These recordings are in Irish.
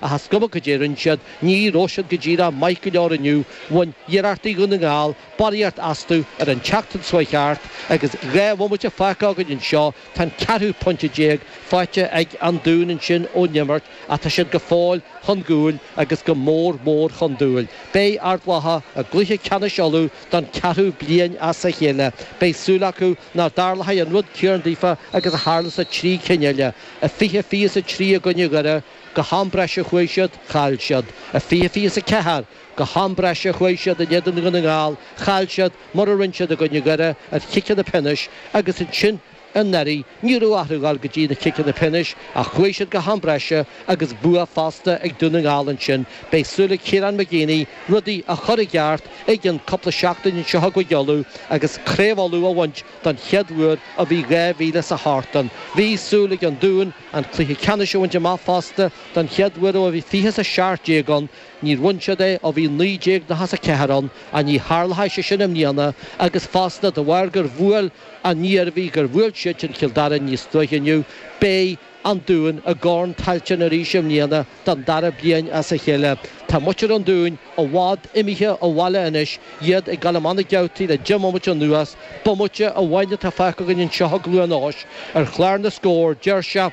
Ach is cuma cad é a rinne siad, ní raibh siad go díreach maith go leor inniu, bhain iarrachtaí Dhún na nGall barraíocht astu ar an tseachtain seo a chuaigh thart agus dhá bhomaite fágtha againn anseo, tá an ceathrú pointe déag faighte ag An Dún ansin ón imirt ach tá siad go fóill chun cúil agus go mór mór chun cúil. Beidh Ard Mhacha i gcluiche ceannais Uladh don ceathrú bliain as a chéile. Beidh súil acu nach dtarlóidh an rud céanna daofa agus a tharla sa trí cinn eile. A fiche fiche is a trí i gcoinne Dhoire, go ham breise chuaigh siad, chaill siad. A fiche fiche is a ceathair, go ham breise chuaigh siad in éadan Dhún na nGall, chaill siad, mar a rinne siad i gcoinne Dhoire ar chiceanna pionóis agus ansin anuraidh ní raibh orthu gabháil go dtí na ciceanna pionóis ach chuaigh siad go ham breise agus bua fosta ag Dún na nGall ansin. Beidh súil ag Kieran McGeeney rudaí a chur i gceart i gceann cúpla seachtain anseo i gCúige Uladh agus craobh Uladh a bhaint. Don chéad uair ó bhí 2008 ann, bhí súil ag an Dún an cluiche ceannais a bhaint amach fosta, don chéad uair ó bhí fiche is a seacht déag ann, níor bhain siad é ó bhí 1994 ann, ach ní tharlóidh sé sin i mbliana agus fosta de bharr gur bhuail an Iarmhí, gur bhuail siad sin Cill Dara níos luaithe inniu, beidh. an Dún i gCorn Tailteann arís i mbliana don dara bliain as a chéile. Tá muintir an Dúin i bhfad imithe abhaile anois, iad ag dul amach na geaftaí le deich mbomaite anuas. Bomaite amháin atá fágtha againn anseo i gCluain Eois ar chlár na scór, deir sé,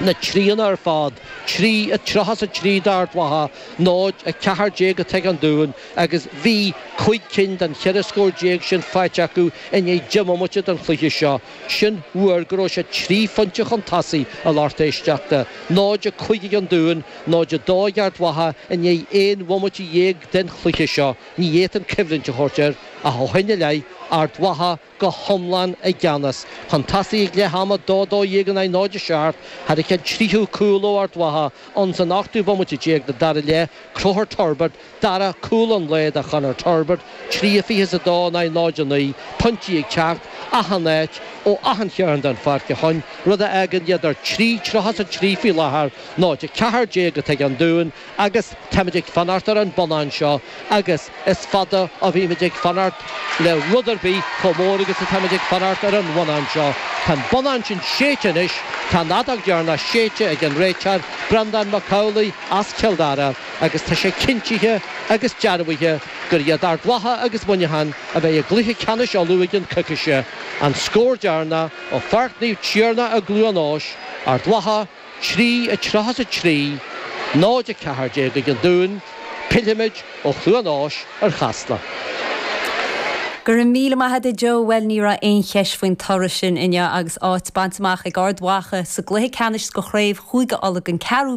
na tríonna ar fad, trí a tríocha is a trí d'Ard Mhacha, náid a ceathair déag atá ag an Dún agus bhí cúig cinn den cheithre scór déag sin faighte acu i ndiaidh deich mbomaite den chluiche seo. Sin uair go raibh sé trí phointe chun tosaigh a lucht éisteachta, 0-5 ag an Dún, 0-2 ag Ard Mhacha, i ndiaidh aon bhomaite dhéag den chluiche seo. Ní fhéadfainn coimhlint a thabhairt air ach ó shin i leith, Ard Mhacha go hiomlán i gceannas. Chun tosaigh ag leath ama, 2 12 in aghaidh 0 7, tháinig an tríú cúl ó Ard Mhacha, ins an ochtú bomaite déag den dara leath, Conchúr Turbitt, Dara cúl an lae do Chonor Turbitt, trí a fiche is a dó in aghaidh náid a naoi, pointí ag teacht achan áit, ó achan chearn den pháirc a choin, rud a fhágann iad ar trí tríocha is a trí faoi láthair, náid a ceathair déag atá ag an Dún agus táimid ag fanacht ar an bonnán seo agus is fada a bhímid ag fanacht le rud ar bith, chomh mór agus atáimid ag fanacht ar an bhonnán seo. Tá an bonnán sin séidte anois, tá an fheadóg dheireanach séidte ag an réiteoir, Breandán Mac Amhlaidh as Cill Dara. agus tá sé cinntithe agus dearbhaithe gur iad Ard Mhacha agus Muineachán a bheidh i gcluiche ceannais Uladh i gceann coicíse, an scór deireanach ó Pháirc Naomh Tiarnach i gCluain Eois, Ard Mhacha 3, 33, 0, 14 ag an Dún, pillfimid ó Chluain Eois ar Chasla. Go raibh míle maith a'd a Joe, bhuel ní raibh aon cheist faoin toradh sin inniu agus áit bainte amach ag Ard Mhacha sa gcluiche ceannais de chraobh Chúige Uladh don ceathrú